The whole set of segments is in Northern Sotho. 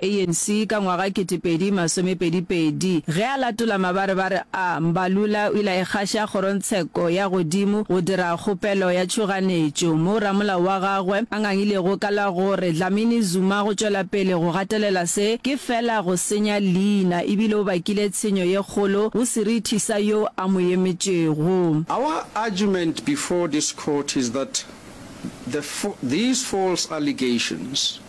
ANC ka ngwaga ketepedi masomepedi pedi. Ge a latola mabarebare a, Mbalula o ile a ikgaša kgorongtsheko ya godimo go dira kgopelo ya tšhoganetšo, moo ramolao wa gagwe a ngangilego ka la go re Dlamini Zuma go tšwela pele go gatelela se ke fela go senya leina ebile o bakile tshenyo ye kgolo go serithi sa yo a mo emetšego. Our argument before this court is that the these false allegations.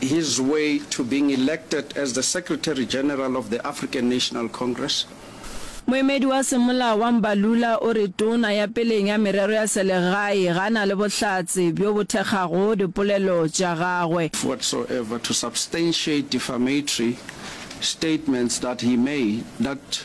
His way to being elected as the Secretary General of the African National Congress. Moemedi wa semolao wa Mbalula o re Tona ya peleng ya merero ya selegae ga na le bohlatse bjo bo thekgago dipolelo tša gagwe. whatsoever to substantiate defamatory statements that he made that.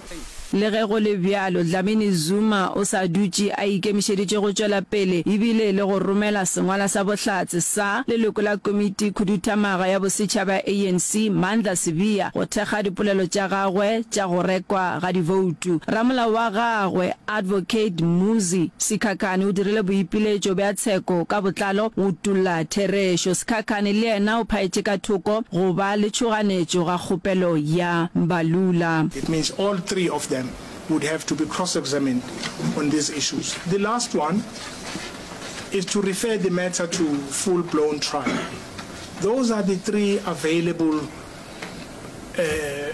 Le ge go le bjalo, Dlamini Zuma o sa dutše a ikemišeditše go tšwela pele e bile le go romela sengwala sa bohlatse sa leloko la Komiti Khuduthamaga ya Bosetšhaba ya ANC, Mandla Sibiya, go thekga dipolelo tša gagwe tša go rekwa ga diboutu. Ramolao wa gagwe, Advocate Mmuzi Sikhakhane o dirile boipiletšo bja tsheko ka botlalo go utolla therešo. Sikhakhane le yena o phaetše ka thoko go ba le tšhoganetšo ga kgopelo ya Mbalula. It means all three of them would have to be cross-examined on these issues. The last one is to refer the matter to full blown trial. Those are the three available uh,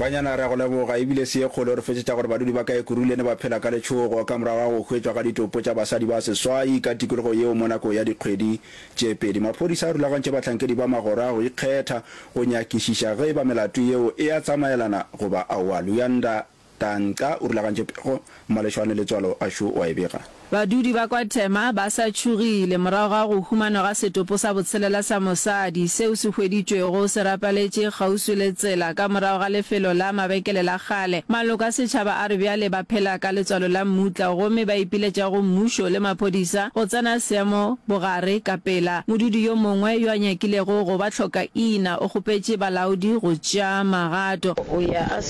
banyana re ya go leboga ebile se ye kgolo re fetsetša gore badudi ba ka ekurule ne ba phela ka letšhogo ka morago ga go hwetšwa ga ditopo tša basadi ba seswai ka tikologo yeo mo nako ya dikgwedi tše pedi maphodisa a rulagantše bahlankedi ba magoro a go ikgetha go nyakišiša ge e ba melato yeo e a tsamaelana goba aowa luyanda Tanka o rulagantše pego, malešwane le tswalo a šo o a e bega. Badudi ba kwa Tema ba sa tšhogile morago ga go humanwa ga setopo sa botshelela sa mosadi seo se hweditšwego se rapaletše kgauswi le tsela ka morago ga lefelo la mabekele la kgale. Maloko a setšhaba a re bjale ba phela ka letswalo la mmutla gomme ba ipiletša go mmušo le maphodisa go tsena seemo bogare ka pela. Modudi yo mongwe yo a nyakilego go ba hlokaina o kgopetše balaodi go tšea magato.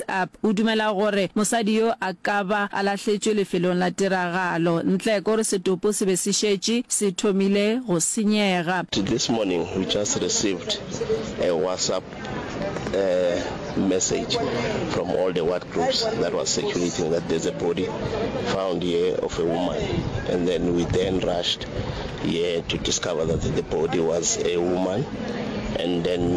Next Up, o dumela gore mosadi yo a ka ba a lahletšwe lefelong la tiragalo. Ntleko o re setopo se be se šetše se thomile go senyega. This morning we just received a WhatsApp message from all the ward groups that was circulating that there's a body found here of a woman and then we then rushed here to discover that the body was a woman and then